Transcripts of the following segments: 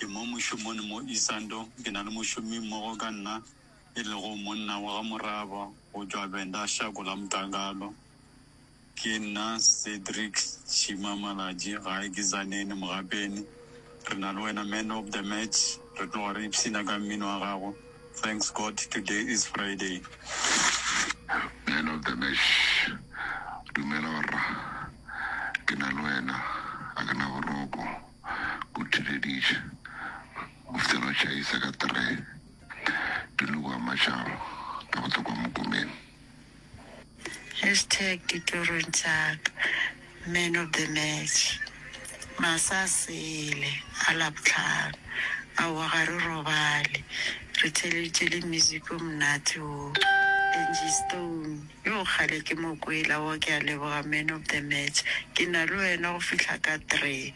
Ke mo mošomone mo Isando. Ke na le mošomi-mmogo ka nna, e lego monna wa ga moraba go tšwa Venda Shako la Mtakalo. Ke nna Cedric Shima Malatji, gae ke Tzaneen Mogapeni. Re na le wena man of the match. Re tloga re ipshina ka mmino wa gago. Thanks God today is Friday. Man of the match, Dumela rra. Ke na le wena, a ke na boroko. o theleditše, o fihla go tšhaisa ka three, pele o ama tšabo ka go tla kwa mokomeng. Hashtag ditorong tša ka man of the match masa sele a labohlano aowa ga re robale re theleditše le music o monate wo Angie Stone. Yoo kgale ke mo kwela wo ke a leboga man of the match ke na le wena go fihla ka three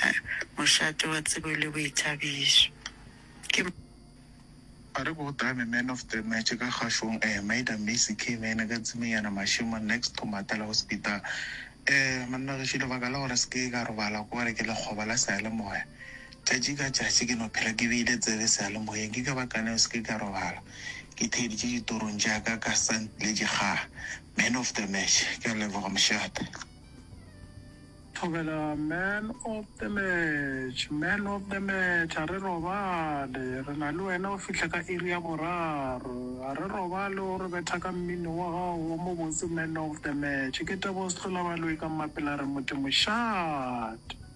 ahh mošate wa tsebo le boithabišo ke A re bo tame man of the match ka kgašong eh Maida Macy K mene ka Tsimiyana Mashemo next to Matala Hospital eh monna gešo lebaka la gore se ke ka robala ke gore ke lekgoba la seyalemoya Tšatši ka tšatši ke no phela ke beile tsebe sealemoyeng, ke ka baka leo se ke ka robala ke theeditše ditorong tša ka ka sa ntletše kgaa. Man of the match, ke a leboga mošate. Thobela, Man of the match, Man of the match, a re robale, re na le wena go fihla ka iri ya boraro, a re robale o re betha ka mmino wa gago o mobotse Man of the match, ke Tebogo Sehlolabaloi ka Mmapela re motse mošate.